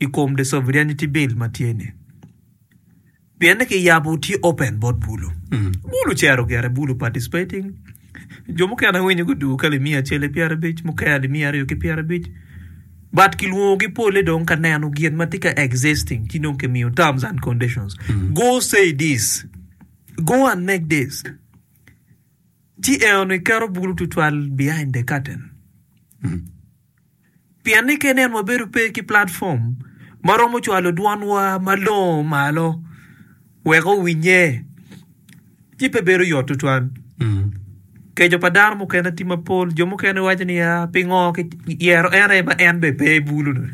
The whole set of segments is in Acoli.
i kom the sovereignty bill ma tye ni pien ni ki yabo tye open bot bulu bulu cero gire bulu participating jo mukene winyo gudugo ka limiya acel ki pyera abic mukene limiya aryo ki pyera abic but ki lwongo gi pole dong ka neno gin ma tye ka existing ci dong ki miyo terms and conditions go say this go and make this ci eno ni keto bulu tutwal behind the curtain. Pien ni ka inen wabedo pe ki platform ma romo cwalo dwanwa malongo malo wek owinye, ci pe bedo yot tutwal. Keco pa dano mukene tye mapol. Jo mukene giwaco niya, pingo kiyero en aye ma en bene pe i bulu-nu?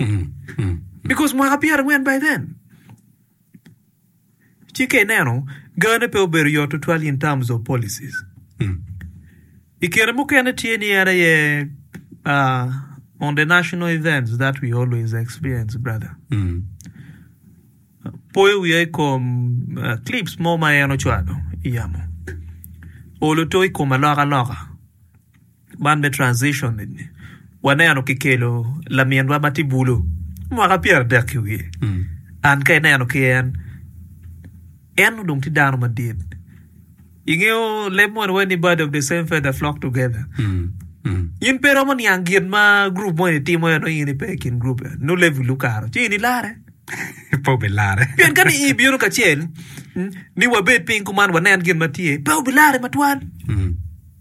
Because mwaka pyerangwen by then. Ci ka ineno, gane pe obedo yot tutwal in terms of policies. I kine mukene tye ni en aye uh, on the national events that we always experience brother. Poyo wiya i kom uh, clips mo ma en ocwalo i yamo. Olo to i kom aloka loka. Man me transition ni waneno ki kelo laminwa ma tye bulu mwaka pyera adek ki wiye and ka ineno ki en en odong tye dano madit ingeyo leb moni waci ni bird of the same feather flock together in pe romo niang gin ma group moni timo eno in ipe i kin group eno nongo level ukaro ci in ilare pe obilare pien ka ni i bino kacel ni wabed piny kuman wanen gin ma tye pe obilare matwal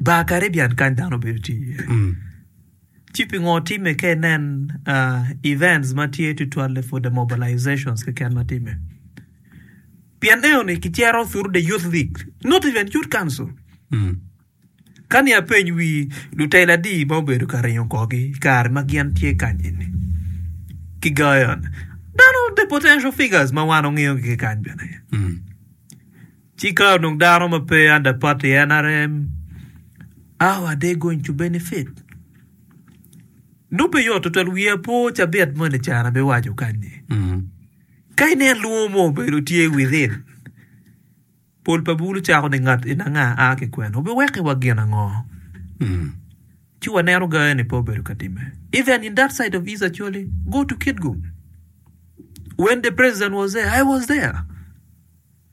Bar Caribbean kany dano bedo tye iye. Mm. Ci pingo time ka inen uh, events ma tye tutwalle for the mobilizations keken ma time? Pien eyo ni kicero through the youth league, not even youth council. Mm. Kani apeny wi lutela adi ma obedo ka ringo kogi kare ma gin tye kany eni. Ki gayon. Dano the potential figures ma wan ongeyo gi kany bene. Mm. Ci ka onongo dano ma pe under party NRM, how are they going to benefit? Nongo pe yot tutwal, wiya pe ocabit mo ni can abiwaco kany-nyi. Ka inen lwongo mo obedo tye within, pol pa bulu cako ni ngat en anga a ki kwene, wubiweki wa gin ango? Ci waneno ga eni pe obedo ka timme. Even in that side of East Acholi, go to Kitgum, when the president was there, I was there.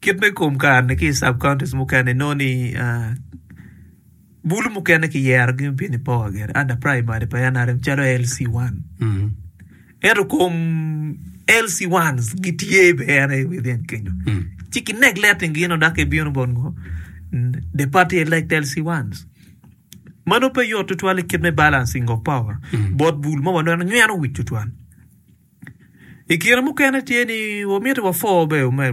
Kit me kom kareni ki i sub counties mukene inongo ni bulu mukene kiyerogi me bino i power gire under primary pa NRM calo LC one ento kom LC ones gitye bene within kenyo ci ki neglecting gino dok kibino bot ngo the party elect LC ones mano pe yot tutwal i kit me balancing of power bot bul ma waneno nyweno wic tutwal i kine mukene tye ni wamiti wa four bene